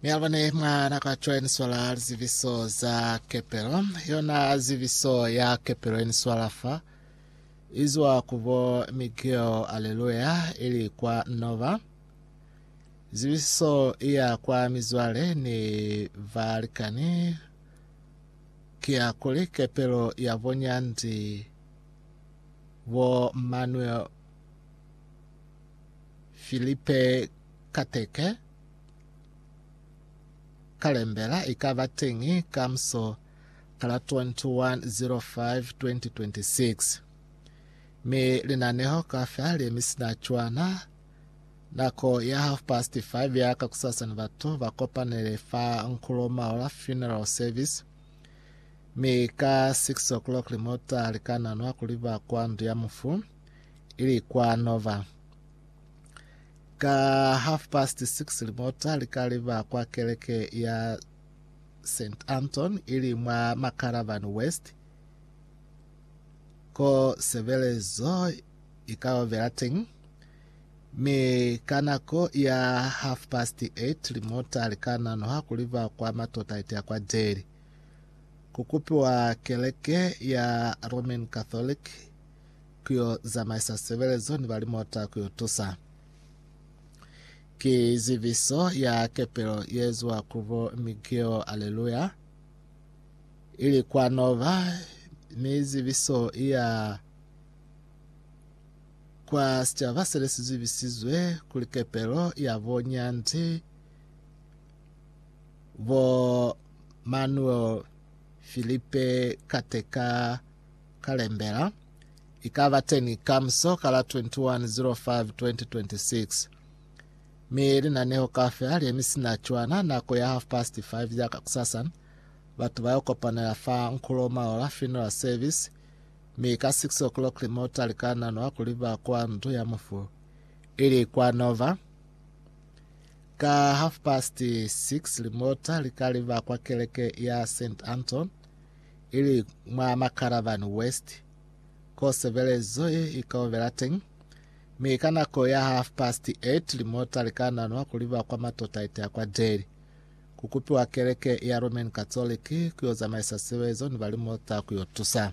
Mialwane mwa nako ya cwale ni swala liziviso za kepelo. Yona ziviso ya kepelo ni swala fa izwa kubo Miguel Aleluya ili kwa Nova. Ziviso iya kwa mizwale ni valikani kia kuli kepelo ya bonya ndi bo Manuel Filipe Kateke, Kalembela i ka ba teñi ka muso ka la 21.05.2026, mi linaneho kaufela li mi sina cwana. Nako ya half past five ya kakusasa ni batu ba kopanele fa Nkulo Maola Funeral Service, mi ka six o'clock limota li ka nanwa kuli ba kwa ndu ya mufu. ili kwa Nova. Ka half past six limota likaliba kwa keleke ya St. Anton ili mwa Macaravan West ko sebelezo ikaovela teng. Mi ka nako ya half past eight limota likananoha kuliba kwa matota itea kwa Delhi kukupiwa keleke ya Roman Catholic ku yo zamaisa sebelezo ni ba limota ku yo tusa. Ki zibiso ya kepelo ye eziwa ku bo Miguel Aleluya, ili kwa Nova, ni zibiso ya kwa sicaba sene si zibisizwe kuli kepelo ya bo Nyandi, bo Manuel Filipe Kateka, Kalembela, i ka ba teñi ka muso ka la 21 05 2026. Mi linaneho kaufela le mi sina cwana nako ya half past 5 ya kakusasa. Batu ba yo kopanela fa Nkulo Maola Funeral Service, mi ka 6 o'clock limota li ka nanwa kuli ba kwa ndu ya mufu, ili kwa Nova. Ka half past 6 limota li ka li ba kwa keleke ya St. Anton. ili mwa Makaravan West, ko sebelezo ye i ka obela teñi, mi ka nako ya half past eight limota li ka nanwa kuli ba kwa Matotaite a kwa Delhi, ku kupiwa keleke ya Roman Catholic ku yo zamaisa sebelezo ni ba limota ku yo tusa.